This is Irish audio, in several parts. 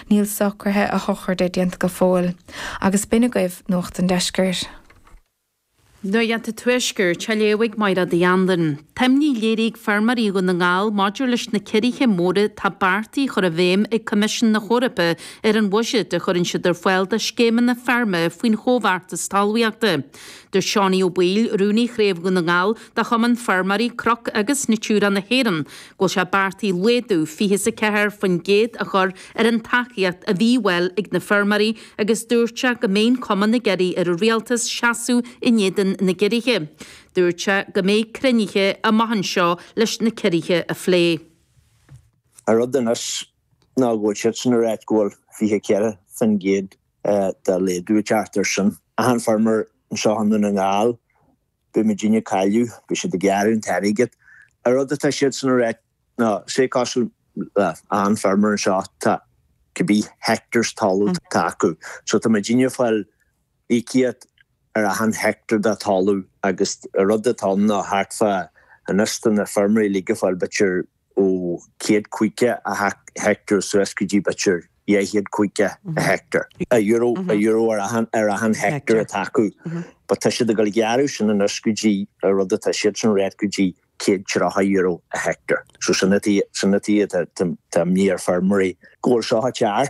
Níl socruithe a shochraide déanta go fóill agus b'in agaibh Nuacht an Deiscirt. Nuacht an Tuaiscirt, á léamh ag Máire Uí Anluain. Tá imní léirithe ag feirmeoirí Dhún na nGall maidir leis na ciorruithe móra atá beartaithe a chur i bhfeidhm ag Coimisiún na hEorpa ar an bhuiséad a chuireann siad ar fáil dá scéimeanna feirme faoin Chomhbheartas Talmhaíochta. Dúirt Seánie Ó Baoill, Rúnaí Chraobh Dhún na nGall de Chumann Feirmeoirí Cnoc agus Natura na hÉireann, go bhfuil sé beartaithe laghdú fiche is a ceathair faoin gcéad a chur ar an tacaíocht a bhí ar fáil ag na feirmeoirí agus dúirt sé go mbeidh an cumann ag iarraidh ar an rialtas seasamh in éadan na gciorruithe. Dúirt sé go mbeidh cruinnithe amach anseo leis na ciorruithe a phlé. An rud anois ná go bhfuil siadsan ag ráit go bhfuil fiche a ceathair faoin gcéad de laghdú ag teacht ar son achan feirmeoir anseo i nDún na nGall. Beidh muidinne ag cailleadh, beidh siad ag gearradh an t-airgead. An rud atá siadsan ag ráit ná, sé cosúil le achan feirmeoir anseo, tá cibé hectares talamh atá acu, so tá muidinne ag fáil íocaíocht ar achan hectare de talamh agus an rud atá ann ná thart fá anois tá na feirmeoirí uilig ag fáil b'fhéidir ó chéad caoga an heicteár suas go dtí b'fhéidir dhá chéad caoga an heicteár. Euro ar achan heicteár atá acu. But tá siad ag dul a ghearradh sin anois go dtí an rud atá siadsan ag ráit go dtí céad tríocha euro an heicteár. So sin an tuige tá imní ar feirmeoirí go bhfuil seo cearr.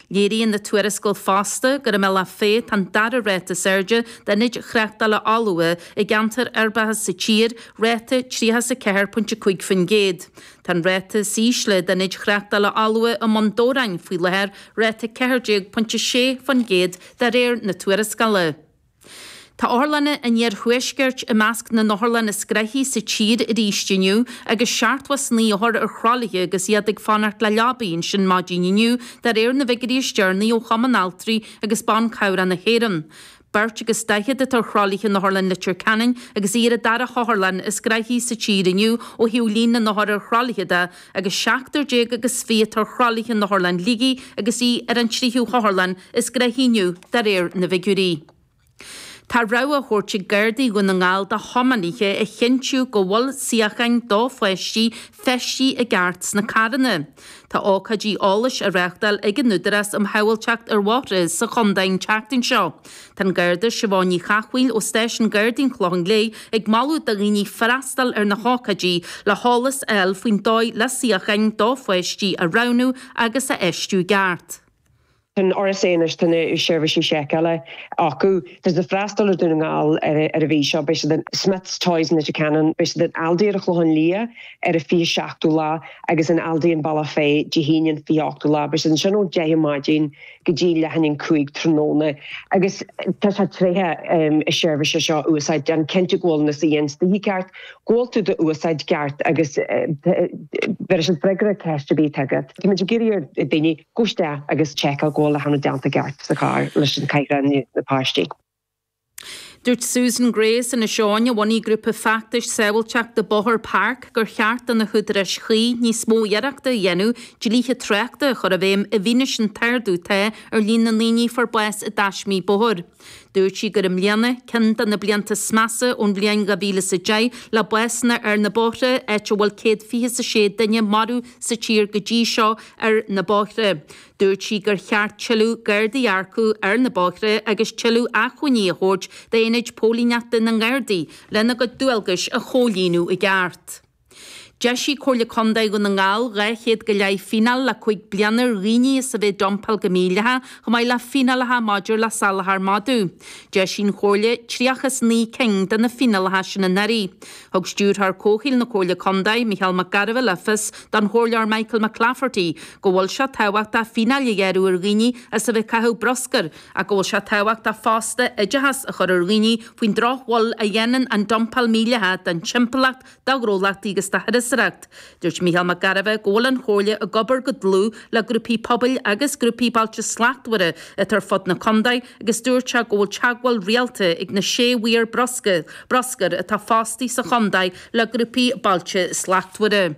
Léiríonn an tuarascáil fosta gur i mBealach Féich atá an dara ráta is airde d'ionaid thráchtála fholmha i gceantair uirbeacha sa tír, ráta 34.5%. Tá an ráta is ísle d'ionaid thráchtála fholmha i mBun Dobhráin faoi láthair, ráta 14.6% de réir na tuarascála. Tá otharlanna an iarthuaiscirt i measc na n-otharlann is gnaithí sa tír arís inniu agus seachtó is naoi othar ar thralaithe agus iad ag fanacht le leabaí ansin maidin inniu, de réir na bhfigiuirí is deireanaí ó Chumann Altraí agus Ban Cabhrach na hÉireann. Beirt agus daichead atá ar thralaithe in Otharlann Leitir Ceanainn agus í ar an dara hotharlann is gnaithí sa tír inniu ó thaobh líon na n-othar ar thralaithe de, agus seachtar déag agus fiche atá ar thralaithe in Otharlann Shligigh agus í ar an tríú hotharlann is gnaithí inniu de réir na bhfigiúirí. Tá rabhadh á thabhairt ag Gardaí Dhún na nGall do thiománaithe a chinntiú go bhfuil suíocháin do pháistí feistithe i gceart sna carranna. Tá ócáidí eolais á reáchtáil ag an Údarás um Shábháilteacht ar Bhóithre sa chontae an tseachtain seo. Tá an Garda Siobhán Ní Chathmhaoil ó Stáisiún Gardaí an Chlocháin Léith ag moladh do dhaoine freastal ar na hócáidí le heolas a fháil faoin dóigh le suíocháin do pháistí a roghnú agus a fheistiú i gceart. Tá an RSA anois, tá na seirbhísí seiceála acu. Tá siad ag freastal ar Dhún na nGall ar an mhí seo, beidh siad in Smyths Toys in Leitir Ceanainn, beidh siad in Aldi ar an Chlochán Liath ar an 27ú lá agus in Aldi in Bealach Féich Dé hAoine an 28ú lá. Beidh siad ansin ón 10 ar maidin. go dtí leath i ndiaidh a cúig tráthnóna agus tá sé tréithe an tseirbhís seo a úsáid déan cinnte go bhfuil na suíocháin istigh i gceart go bhfuil tú dá úsáid i gceart agus beidh siad ag freagairt ceist ar bith atá agat. Táimid ag iarraidh ar daoine goil isteach agus seiceáil go bhfuil achan rud déanta i gceart sa charr leis an cathaoir do na páistí. Dúirt Susan Gray as Inis Eoghain a bhunaigh grúpa feachtais sábháilteachta bóthair PARC gur cheart do na húdaráis chuí níos mó d'iarracht a dhéanamh dlíthe tráchta a chur i bhfeidhm i bhfianaise an t-ardú atá ar líon na ndaoine a fuair bás i dtaismí bóthair. Dúirt sí gur i mbliana ceann de na blianta is measa ón bhliain 2010 le básanna ar na bóithre, áit a bhfuil céad fiche is a sé duine marbh sa tír go dtí seo ar na bóithre. Dúirt sí gur cheart tuilleadh Gardaí a earcú ar na bóithre agus tuilleadh acmhainní a thabhairt d'aonaid póilíneachta na nGardaí lena gcuid dualgais a chomhlíonadh i gceart. D'eisigh Comhairle Contae Dhún na nGall 200 go leith fíneáil le cúig bliana ar dhaoine as a bheith ag dumpáil go mídhleathach chomh maith le fíneálacha maidir le salachar madadh. D'eisigh an Chomhairle 39 cinn de na fíneálacha sin anuraidh. Thug Stiúrthóir Comhshaoil na Comhairle Contae, Mícheál Mac Gairbheith le fios don Chomhairleoir Michael McClafferty go bhfuil sé tábhachtach fíneáil a ghearradh ar dhaoine as a bheith ag caitheamh bruscair ach go bhfuil sé tábhachtach fosta oideachas a chur ar dhaoine faoin drochbhail a dhéanann an dumpáil mhídhleathach don timpeallacht, do ghnólachtaí agus do thurasóireacht. Dúirt Mícheál Mac Gairbheith go bhfuil an Chomhairle ag obair go dlúth le grúpaí pobail agus grúpaí Bailte Slachtmhara atá ar fud na condae agus dúirt sé go bhfuil teagmháil rialta ag na sé mhaor bruscair atá fostaithe sa chondae le grúpaí Bailte Slachtmhara.